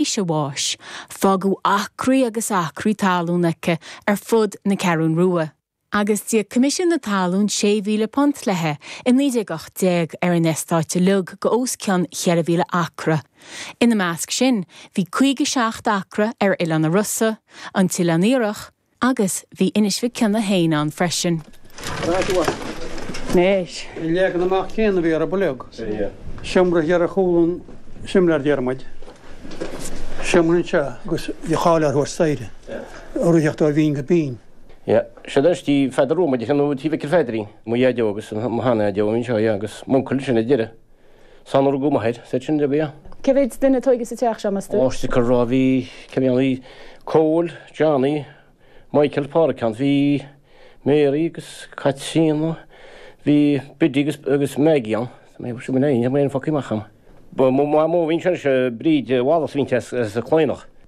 éis a bháis, fágadh acraí agus acraí talún aici ar fud na Ceathrún Rua, agus d'íoc Coimisiún na Talún £6,000 leithe i 1918 ar an eastát uilig os cionn 4,000 acra. Ina measc sin bhí 57 acra ar Oileán na Rosa, An tOileán Iarthach, Agus bhí Inis Mhic Cionnaith féin ann freisin. An leagan amach céanna a bhí ar an blog, seomra thiar ar chúl an tsimléir, déarfaidh muid, seomra anseo agus bhí cháil air a thabhairt staighre urraíochta ó bhinn go binn. Yeah, sé do istigh Tí Pheadair Rua, Maidí Shean Nua, Tí Mhicil Pheaidrín, mo dheaideo agus mo shean-dheaideo anseo, yeah, agus m'uncail ansin ar deireadh. San urgu maher, sech sin de bia. Cé mhéid duine a tógadh sa teach seo, meas tú? Ó is deacair a rá bhí, cé bhí ann, bhí Cóil, Johnny, Michael, Pádraig ann, bhí Mary agus Caitríona, bhí Biddy agus, agus Maggie ann. Tá mé sin mé aon focaí amach ann. Ba mo mhamó a bhí ansin, sí Bríd Wallace a bhí inti as Cladhnach.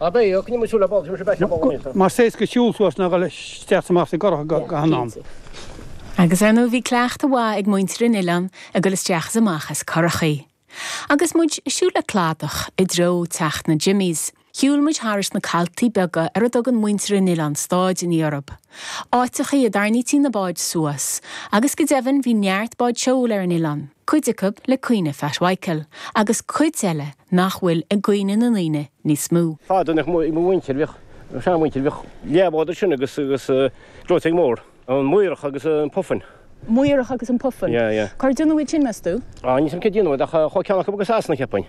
Mar is éasca siúl suas ná dul isteach is amach as curach go han am. Agus ar ndóigh bhí cleachtadh mhaith ag muintir an Oileáin ag dul isteach is amach as currachaí. Agus muid ag siúl le cladach i dtreo teach na Jimmies, shiúil muid thairis na caltaí beaga ar a dtugann muintir an Oileáin stáideanna orthu. Áiteachaí a dtarnaítí na báid suas. Agus go deimhin bhí neart báid seoil ar an Oileán. cuid acu le cuimhne Phat Mhichael agus cuid eile nach bhfuil i gcuimhne na ndaoine níos mó. Fadó nach mó mo mhuintir bhíodh, mo shean mhuintir bhíodh leathbhád ansin agus agus gleoiteog mór, an Maorach agus an Puffin. Maorach agus an Puffin. Yeah yeah. Cár déanadh iad sin meas tú? Ah níl 'fhios a'm cé déanadh iad ach chuaigh ceann acu go Sasana cheapfainn.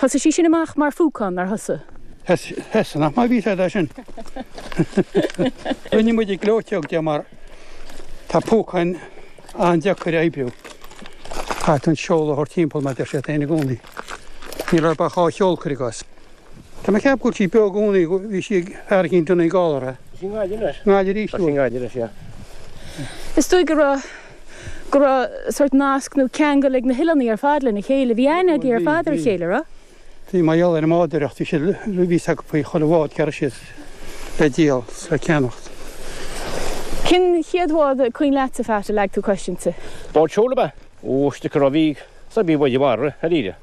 Thosaigh sí sin amach mar phúcán, nár thosaigh? Thosaigh, nach maith a bhí 'fhios a'd é sin? Rinne muid gleoiteog de mar tá púcáin an-deacair a oibriú. Caithfidh tú an seol a thabhairt timpeall mar deir siad féin i gcónaí. Níl orthu ach dhá sheol, cuir i gcás. Tá mé ag ceapadh go bhfuil sí beo i gcónaí, bhí sí ag fear eicínt i Donegal. Tá sí i nGaillimh anois. Gaillimh arís? Tá sí i nGaillimh anois, yeah. Is dóigh go raibh. go raibh sort nasc nó ceangal ag na hoileánaigh ar fad lena chéile. Bhí aithne agaibh ar fad ar a chéile, raibh? Bhí mar gheall ar an mbádóireacht, bhí siad, bhí 'fhios acu faoi chuile bhád, cá raibh siad le díol 's le ceannacht. Cén chéad bhád is cuimhin leatsa, Phat, a leag tú cos inti? Bád seoil ab ea? Ó, is dóigh go raibh, bhí, sea, bhí báid iomartha, dáiríre.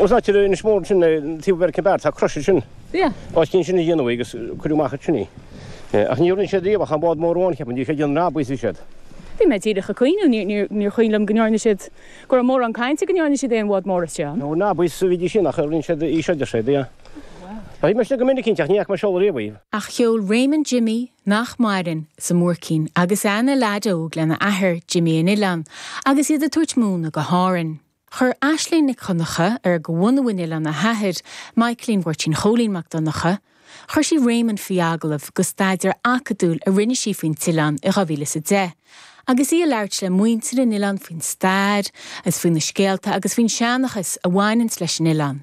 Os ait ar Inis Mór ansin taobh an American Bar tá crois ansin. Os cionn sin a déanadh í agus cuireadh amach ansin í. Ach níor dhéan siad riamh ach an bád mór amháin cheapfainn. Bhí sé ag déanamh rabaí sa chéad. Bhí mé díreach ag cuimhneamh. Ní cuimhin liom go ndearna siad, go raibh mórán cainte go ndearna siad aon bhád mór as John. Nó rabaí is bhídís sin ach rinne siad í seo, deir sé. Yeah. Bhuel, bhí mé istigh go minic inti ach ní fhaca mé ag seoladh riamh í. Ach sheol Raymond Jimmy nach maireann sa mbuaircín agus é ina leaid óg lena athair, Jimmy an Oileáin, agus iad ag tabhairt móna go hÁrainn. Chuir Aisling Nic Dhonncha ar go bhunadh an oileáin a hathair, Michaeline Mháirtín Chóilín Mac Donncha. Chuir sí Réamonn faoi agallamh go staidéar acadúil a rinne sí faoin t-oileán i 2010, agus í ag labhairt le muintir an oileáin faoin stair, agus faoi na scéalta agus faoin seanchas a bhaineanns leis an oileán.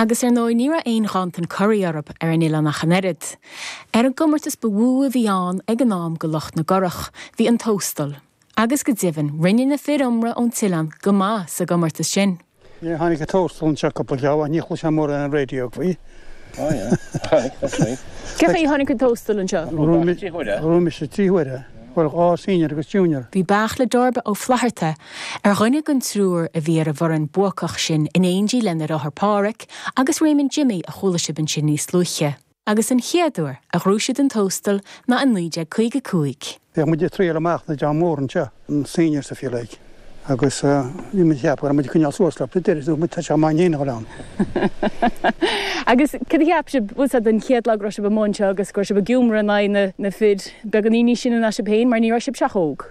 Agus ar ndóigh ní raibh aon ghanntan curaí orthub ar an oileán ach an oiread. Ar an gcomórtas ba mhó a bhí ann ag an am go lucht na gcurach bhí an Tóstal. Agus go deimhin rinne na fir iomartha ón t-oileán go maith sa gcomórtas sin. Níor tháinig an Tóstal anseo cúpla lá ó shin, ní chloisfeá mórán ar an raidió faoi. Ó yeah, aye, that's right. Cé chaoi a tháinig an Tóstal anseo? Ghnóthaigh mise trí huaire. Bhuel dhá senior agus junior. Bhí Beairtle Darby Ó Flatharta Ar dhuine den triúr a bhí ar an bhfoireann buacach sin in éindí lena dheartháir Páraic agus Réamonn Jimmy a chuala sibh ansin níos luaithe. agus an chéad uair a ghnóthaigh siad an Tóstal ná i 1955. Bhíodh muid ag triail amach an dream mór anseo, na seniors if you like, agus bhí muid ag ceapadh go raibh muid ag coinneáil suas leo, but deireadh muid tá sé chomh maith dhúinn a ghoil ann. Agus céard a cheap sibh, bhuel sa den chéad lá go raibh sibh amuigh anseo agus go raibh sibh ag iomramh in aghaidh na fir, beagáinín níos sine ná sibh féin mar ní raibh sibhse ach óg?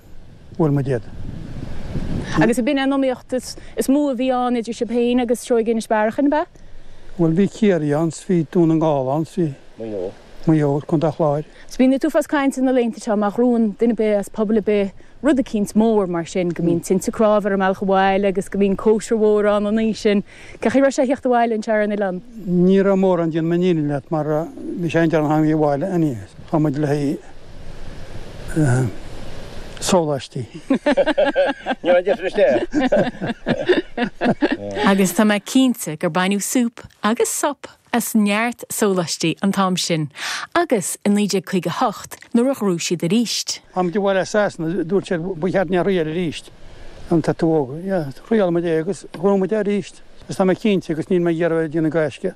bhuail muid iad. Agus ab in í an iomaíocht is mó a bhí ann idir sibh féin agus Seoighe Inis Bearachain, ab ea? Bhuel, bhí Ciarraí ann, 's bhí Dún na nGall ann, 's bhí. Maigh Eo. Maigh Eo, Co. an Chláir. 's bíonn an t-uafás cainte na laethanta seo má ghnóthaíonn duine ar bith as pobal ar bith rud eicínt mór mar sin go mbíonn tinte cnámh ar an mbealach abhaile agus go mbíonn cóisir mhór ann an oíche sin. Cén chaoi a raibh sé a thíocht abhaile anseo ar an oileán? Ní raibh mórán déanfaidh mé an fhírinne leat mar bhí sé an-deireanach abhaile a'inn chuaigh muid le haghaidh sólaistí. Ní deiste. Agus tá mé cinnte gur baineadh súp agus sop. as neart sólaistí an t-am sin agus i 1958 nuair a ghnóthaigh siad aríst. Tháinig muid abhaile as Sasana, dúirt siad, ba cheart dúinn é a thriail aríst an t-eatramhóg. Thriail muid é agus ghnóthaigh muid é arís agus tá mé cinnte agus níl mé ag iarraidh a bheith ag déanamh gaisce